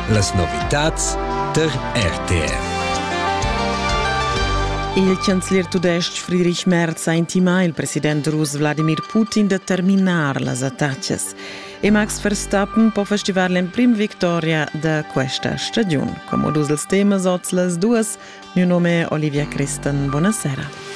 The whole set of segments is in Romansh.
Las novitads der RTR. Il chanzler tudestg Friedrich Merz ha intimà il president rus Wladimir Putin da terminar las attacas e Max Verstappen po festivar l'emprim victoria da questa stagiun. Come dus els temas oz las duas Mio nome è Olivia Christen. Buonasera.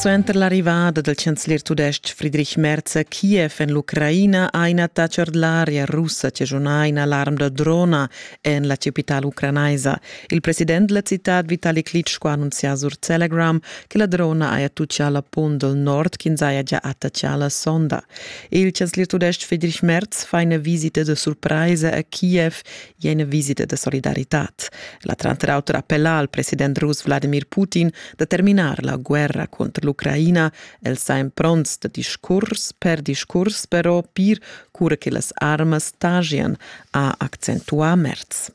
Suenter l'arrivada del chancelier tudestg Friedrich Merz a Kiev en l'Ucraina ha in attacher dell'aria russa che suona in alarm da drona en la capital ucranaisa. Il president della città Vitali Klitschko ha annunziato sur Telegram che la drona haja tuccià la punt del nord che saja già attacciata la sonda. Il chanzliertudestg Friedrich Merz fa ina visita de surpresa a Kiev e ina visita de solidaritat. La tranter auter appella al president rus Vladimir Putin da terminar la guerra contro l'Ucraina. El sa in pronts de discurs per discurs, però pir cura che las armas stagian, ha accentuà Merz.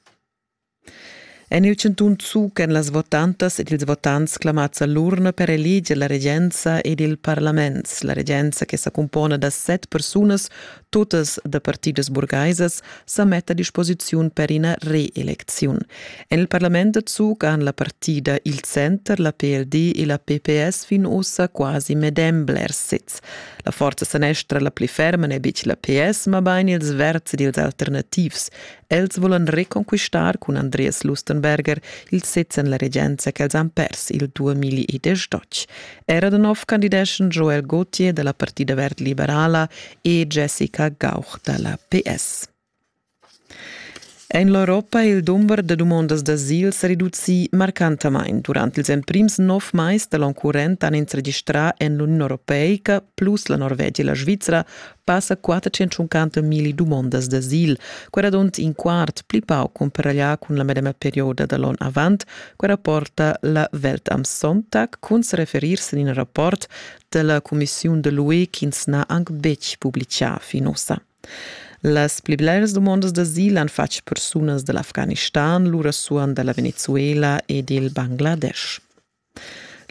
En il chantun Zug èn las votantas ed ils votants clamads a l'urna per eleger la regenza ed il parlament. La regenza che sa cumpona da set persunas, totas da partidas burgaisas, sa metta a disposiziun per ina reelecziun. En il parlament da Zug han la partida il Center, la PLD e la PPS fin ussa quasi medem bler sez. La forza sanestra la pli ferma n'è betg la PS, mabain ils verds ed ils alternativs. Els volan reconquistar cun Andreas Lustenberger il sez en la regenza ch'els han pers il 2012. Era da nov candideschan Joel Gauthier dalla Partida verd liberala e Jessica Gauch dalla PS. En l'Europa è il dumber da dumondas d'asil sa reduci marcantamain. Durant ils emprims nov mais da l'onn current han ins registrà en l'Uniun Europeica plus la Norvegia e la Svizzera passa quartacentschuncanto milli dumondas d'asil, quella dont in quart pli pau cumparaglià cun la medema perioda da l'on avant, quella porta la Welt am Sonntag cun se referirse in in rapport della Commissiun de l'UE ch'ins n'ha anc betg publicà fin ossa. Las pli bleras domondas d'asil han fatg persunas dall'Afghanistan, lura suan dalla Venezuela e dil Bangladesh.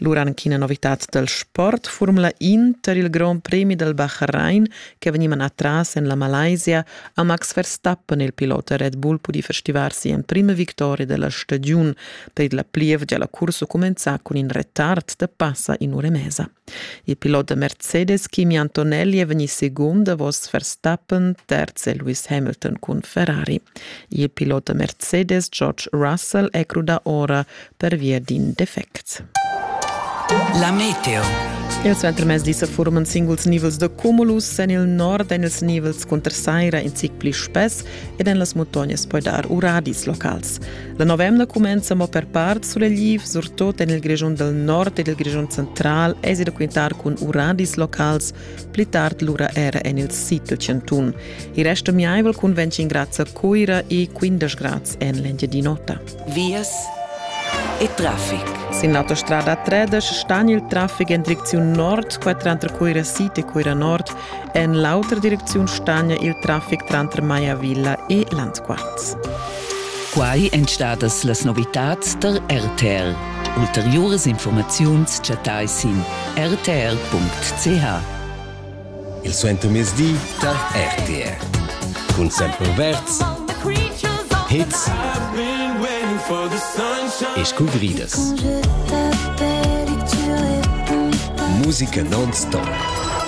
Lura anc ina novitad dal sport. Formula Inter, il grond premi dal Bahrain che vegni manà tras en la Malaysia, ha Max Verstappen, il pilot da Red Bull, pudì festivar sia emprima victoria della stagiun. Per la plievgia la cursa cumenzà cun in retard da passa in ura e mesa. Il pilot da Mercedes Kimi Antonelli è vegnì segund davos Verstappen, terz è Lewis Hamilton cun Ferrari. Il pilot da Mercedes George Russell è crudà ora pervia d'in defect. La meteo. Il suentermezdi sa forman singuls nivels da cumulus en il nord en ils nivels cunter saira in zic pli spess ed en las muntognas poi dar uradis locals. La novemna cumenza mo per part sulegliv, surtut en il Grischun dal nord ed il Grischun central èsi da quintar cun uradis locals, pli tard lura era en il sid dal chantun. Il resto miaivel cun 25 grads a Cuira e 15 grads en l'Engiadin'Ota. Vias e traffic. Sin l'autostrada 13 stan il traffic en direcziun nord, qua tranter Cuira Sid e Cuira Nord, En l'autra direcziun stagna il traffic tranter Maya Villa e Landquarz. Quai èn stadas las novitads tar RTR. Ulteriuras informaziuns chattai sin rtr.ch. Il suentermezdi tar RTR. Cun Sempre Verts, Hits e scuvridas. Musica non-stop.